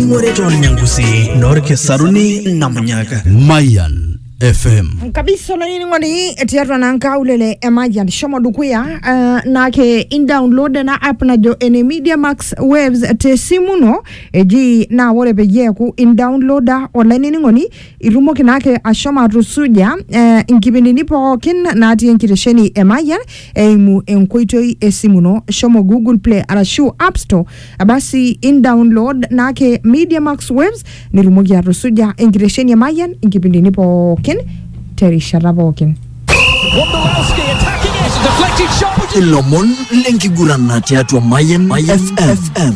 Ng'ore to Nyangusi, Norke Saruni, Namunyaka. Mayan FM. kabisa olainining'oni tiatua naa nkaulele e Mayian shomo dukuya uh, naake indownload ena app najo ene Media Max Waves te simu ino eji naa ore peyie eeku indownloada olainining'oni itumoki naake ashomo atusuja uh, inkipindini pookin natii enkitesheni e Mayian eimu enkoitoi e simu ino shomo Google Play arashu App Store Abasi indownload naake Media Max Waves nitumoki atusuja enkitesheni e Mayian inkipindini pookin terishata pookin. Wondolowski attacking it, a deflected shot. Would you ilomon lenkigurana tiatua Mayan FM.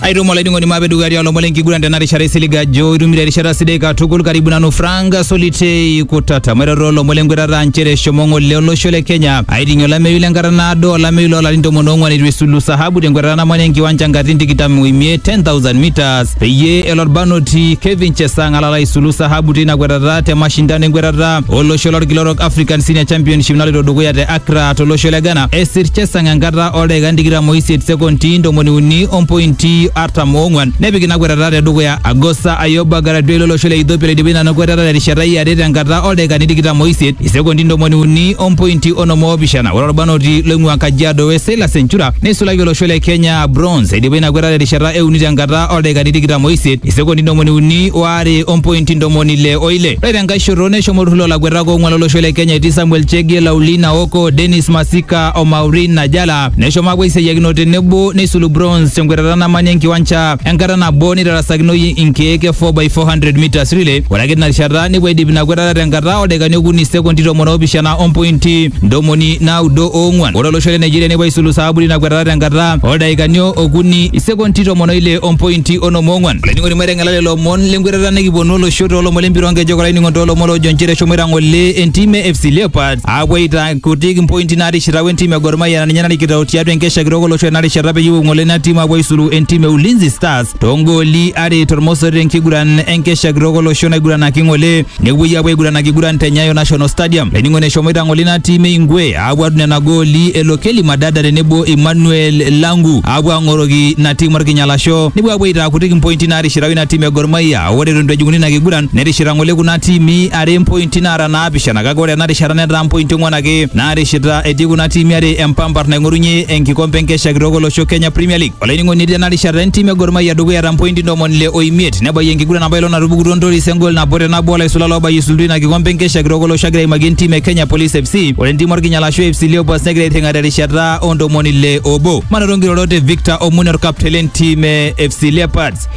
aitumo laiding'oni maape dukuya tialo lomon lenkiguran tena rishata isilig ajo itumito erishata sidai katukul karibu nanu frank solitei kutata maiteru lomon lenkwetata nchere eshomo ng'ole olosho le kenya Aiting'ie olameyu lenkata naado olameyu loolarin tomon oong'wan eitu esulu sahabu tenkwetata namanya enkiwanja nkatitin tikitam oimiet 10,000 meters peyie elo olbarnoti Kevin Chesang alala aisulu sahabu teina kwetata te mashindano enkwetata olosho lolkila orok African Senior Championship naloito dukuya te Accra tolosho le Ghana. Esir Chesang enkata oldaikan tikitam oisiet sekonti ntomoni uni ompointi artam oong'wan nepik ina kwetata te dukuya Agosta Ayoba Garadwel olosho le Ethiopia oidipa ina kwetata terishata e are tenkata oldaikani tikitam oisiet isekondi ntomoni uni ompointi onom oopishana ore orbanoti loing'ua Kajiado West Silas Enchura neisulaki olosho le Kenya bronze eidipa ina kwetata terishata e uni tenkata oldaikani tikitam oisiet isekondi ntomoni uni waare ompointi ntomoni ile oile ore tenkae shoto neshomo olturrur loolakuetak oong'uan lolosho le Kenya etii Samuel Chege Laulina Oko Dennis Masika o Maureen Najala neshomo aapuo aisiayiakino tenebo neisulu bronze tenkwetata namanya enkiwanja enkata nabo neitarasakinoyu inkeek e 4x400 meters relay ore ake tina rishata nepuo aidip ina kwetata tenkata oldakikani okuni sekondi tomon oopishana ompointi ntomoni naudo oong'uan ore olosho le nigeria nepuo aisulu saaburi ina kwetata tenkata oldakikani okuni isekondi tomon oile ompointi onom oong'uan olainining'oni maiteng'ela lelo omon lenkwetata nikiponu olosho toolomon lempira oonkejek olainining'oni toolomon loojo nchere eshomoita ng'ole entim e fc leopards aapuo aita Kutiik mpointi naarishita we ntim e Gor Mahia na ninye narikito tiatua enkesha kitok olosho ena rishata peyie epuo ng'ole ina tim apuo aisulu entim e Ulinzi Stars toongooli are tormosor tenkiguran enkesha kitok olosho naiguranaki ng'ole nepuoi apuo aiguranaki kiguran te Nyayo National Stadium. Laining'oni eshomoita ng'ole ina tim e Ingwe apuo adung nena gooli elo Kelly Madada tenebo Emmanuel Langu apuo ang'oroki ina tim orkinyalasho nepuo apuo aitaa kutik mpointi naarishita ina tim e Gor Mahia ore eton eitu ejing'uni ina kiguran nerishita ng'ole kuna tiimi are mpointi naata naa naapishana kake ore ena rishata netaa mpointi ong'uan ake naarishita etii kuna tiimi are empampar naing'orunye enkikompe enkesha kitok olosho Kenya Premier League. Olainining'oni etii ena rishata entim e Gor Mahia dukuya eeta mpointi ntomoni ile o imiet nebayie enkiguran apa ilo natupukutuo Ntoris engol nabo te nabo olaisula loobayie isultu ina kikompe enkesha kitok olosho agira aimaki entim e Kenya Police FC. Ore entim orkinyalasho FC Leopards negira airring'a terishata oo ntomoni ile obo. Manoto nkirorot e Victor Omune orkapteni lentim e FC Leopards.